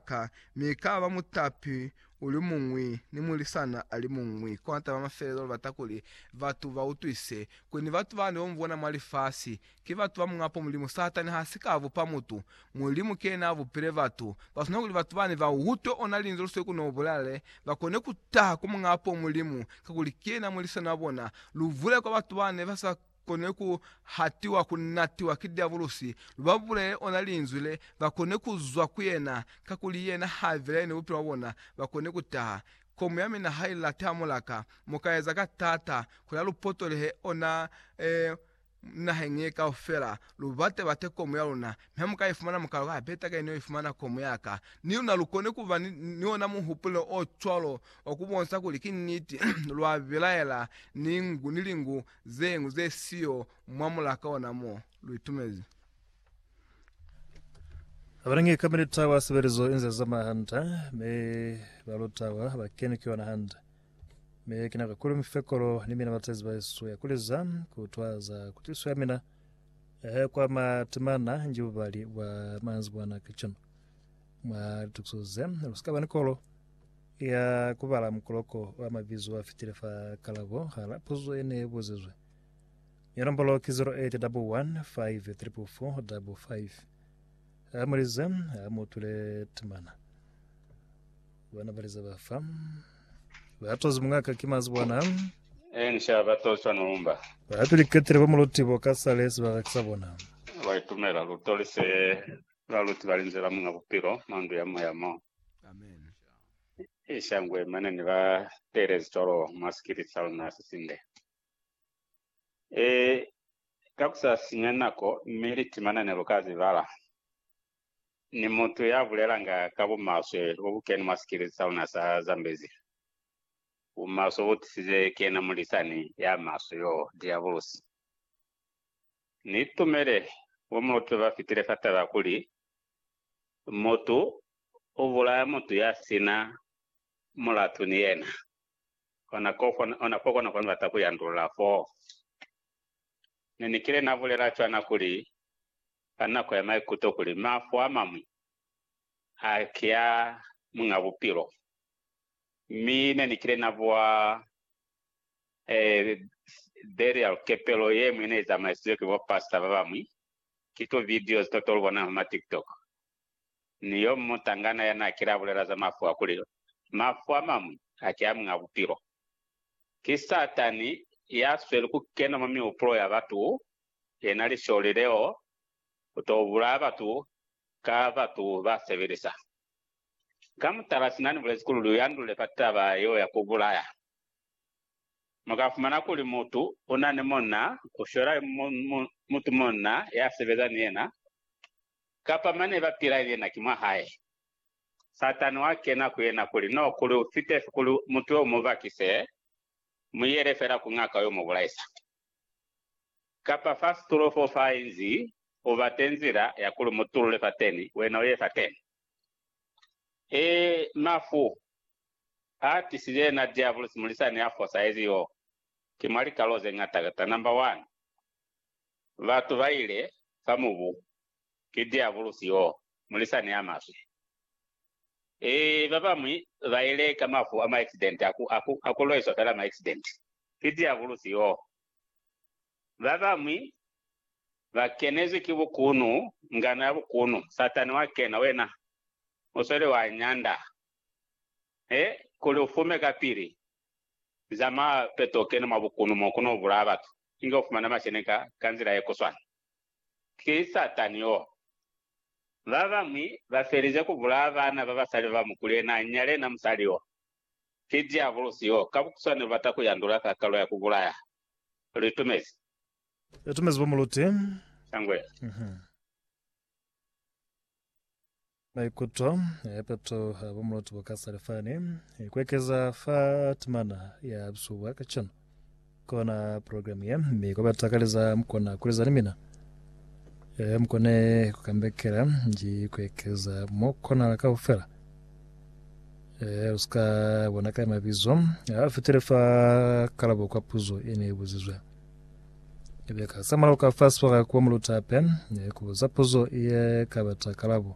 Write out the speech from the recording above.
ka, mi ka ba mutapi uli muñwi ni mulisana ali muñwi. Kona taba ya mafelelo, lu bata kuli batu ba utwise kuli ni batu bani bo mu bona mwa lifasi ki batu ba muñ'a po Mulimu. Satani ha si ka bupa mutu. Mulimu ki yena a bupile batu. Ba swanela kuli batu bani ba utwe ona linzwi lu sili ku no bulala le, ba kone ku taha ku muñ'a po Mulimu, kakuli ki yena mulisani wa bona. Lu bule kwa batu bani ba sa kone ku hatiwa, ku natiwa ki Diabulusi, lu ba bulele ona Linzwi le ba kone ku zwa ku yena, kakuli yena ha velaye ni bupilo bwa bona, ba kone ku taha. Komu ya mina ha i late ha mu la ka, mu ka eza ka taata kuli ha lu potolehe ona, ee, naheng ye kaufela, lu bate bate komu ya luna, mi ha mu ka i fumana, mu ka lwa ku ha peta ka ini yo i fumana komu ya ka. Ni luna lu kone ku ba ni, ni ona muhupulo o cwalo wa ku bonsa kuli ki niti, lwa belaela ni ngu, ni lingu Zeñwi ze siyo mwa mulaka ona mo lu itumezi. Abanangi ka militahwa sebelezo inze zama hande, mi balutahwa bakeni kuyona hande. Mi ki nako kuli mufekolo ni mina batezi baesu ya kuliza kutwa za kutiso ya mina ehe kwa matemana nji bubali bwa manzibwana kacenu. Mwa litukiso ze, lusika bani kolo. Ya ku bala mukoloko wa mabizo wa fitile fa kalabo hala puzo ye ne buzizwe. Ya nombolo ki 0811544555. A mulize, a mu tule timana. Bana balize ba fa. Ba tozi mungaka ki mazi bona. E ni sha ba tozwa numba. Ba piliketile ba muluti bo ka sale sibaka ki sa bona. Ba itumela luto li se ba luti ba linzela munga bupilo mwa ndu ya moya mo. I shangwe mane ni ba teelezi cwalo mwa sikiliti sa luna se sinde. E, ka ku sa sinya nako, mi liti mane ne lu ka zi bala. Ni mutu ya bulelanga ka bumaswe bo bu keni mwa sikiliti sa luna sa Zambezi. Bumaswe bu tisize ki yena mulisani ya maswe yoo, Diabulusi. Ni itumele bo muluti ba fitile fa taba kuli Mutu u bulaya mutu ya si na mulatu ni yena. Ona ko kona kwa ni bata ku yandulula foo. Ne ni kile na bulela cwana kuli, ka nako ya maikuto, kuli, Mafu a mañwi a ki a Muñ'a Bupilo. Mi ne ni kile na buha burial, kepelo ye ñwi ye ne i zamaisize ki bo pastor ba bañwi, Ki tu videos to tolu bona huma tiktok. Ni yo mutangana ya na kile a bulela za mafu a kuli, Mafu a mamwi a ki a muñ'a bupilo. Ki Satani ya sweli ku kena mwa mihupulo ya batu, yena lisholi leo, ku to bulaya batu ka batu ba sebelisa. Ka mutala, sina ni bulezi kuli lu yandule fa taba yeo ya ku bulaya. Mu ka fumana kuli mutu u na ni munna, u shwela mutu munna ya sebeza ni yena, kapa mane ba pila ni yena ki mwa hae. Satani wa kena ku yena kuli, No, kuli u fitefi kuli mutu yo u mu bakise, mu yele fela ku ngaka yo mu bulaisa. Kapa fa situlo fo fa inzi, u bate nzila ya kuli u mu tulule fateni, wena u ye fateni. Ee, mafu a tisizwe yena Diabulosi mulisani ya fosahezi y'o ki mwa likalo ze ñata. Ta namba wani, batu ba ile fa mubu ki Diabulosi y'o, mulisani ya maswe. Ee, ba bañwi ba ile ka mafu a maeksidenti, a ku lwaiswa fela maeksidenti. Ki Diabulosi y'o. Babañwi ba kenezwi ki bukunu, ngano ya bukunu. Satani wa kena, wena u sweli wa nyanda he kuli u fume kapili. Zamaya peto u kene mwa bukunu mo ku no bulaya batu, inge u fumana masheni ka, ka nzila ye ku swana. Ki Satani yo. Babañwi ba felize ku bulaya bana ba basali ba bamukuli, yena a nyale, yena musali yo. Ki Diabulosi yo ka bukuswane ubata ku yandula kakalo ya ku bulaya. Lu itumezi. Ya tumezi bo muluti. Shangwe. Maikuto a ipeto a bo muluti bo ka salifani, ku ekeza fa timana ya bisubwa kacenu. Kona program ye mi koba takaleza mkona kuleza ni mina e mkone kukambekela nji kuekeza mo konala kaufela e uska bona ka mabizo a fitile fa kalabo kwa puzo e ne buzizwe ebe ka samala ka fa swara kwa mulutape ne kubuza puzo e ka bata kalabo